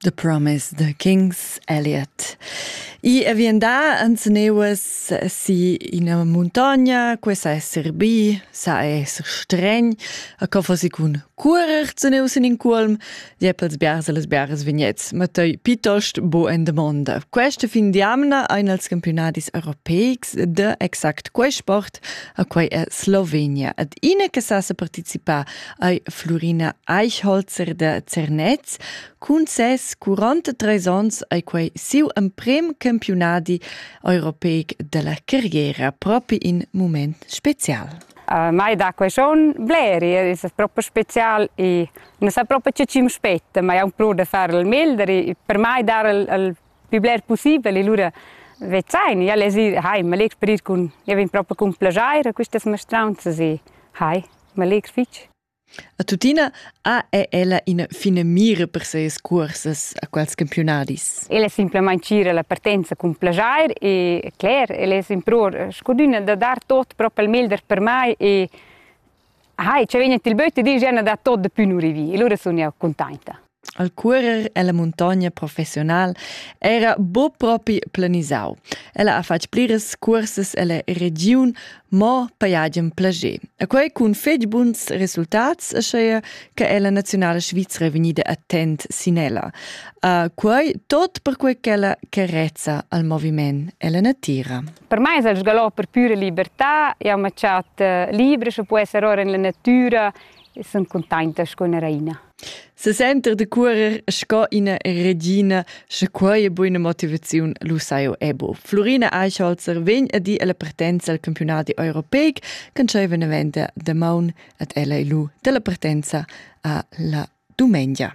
The Promise, The King's Elliot. I è vien da Anzeneuas si ina montagna, questa essere bi, sa essere stregn, a co fossi cun curer Zeneus in in culm, jeppels biars e les biars vignets, ma toi piuttost bo en domanda. Questa fin di amna ein els campionadis europeics de exact quei sport, a quei è Slovenia. Ad ine che sa se participa ei Flurina Eichholzer de Zernez. Cun ses 43 onns ei quei siu emprem campionadi europeic della carriera propi in moment special. Uh, mai da quei schon bleri, è proprio special e non sa proprio che ci mi spetta, ma è un plus de fare il meglio, per mai dar il, il pli bler pussibel e lura vezain jau less ir hai, ma legher per ir cun, jau vegn propi cun plaschair a questas mastraunzas e hai, ma legher fitg. A tuttina ha ella ina finamira per ses cursas a quels campionadis. Ella simplamain tgira la partenza cun plaschair e cler, ella è impror scuduna da dar tot propi il meglder per mai e Hai, ci vegn il böt e din Jenna da tot de pü nu rivi. E lura sun io cuntainta. Al curer ella montagna professional era bo propi planisau. Ella ha fatg pliras cursas ella regiun, mo paiagen plager. E quei cun fetg buns resultats, aschaia che ella nazionala Svizra è vegnida attent sin ella. Uh, quei tot perquei ch'ella carezza al moviment e la natira. Per mai es el sgalò per püra libertà, jau m'ha chat libra, sche po esser ora in la natüra e sun cuntainta sco üna raina. Se senter de curer sco ina regina, sche quei buona motivaziun lu sai ebo. Florina Eichholzer vegn a dir alla partenza al campionati europeic che sceva ne venda de maun ad ella e lu della partenza a la dumengia.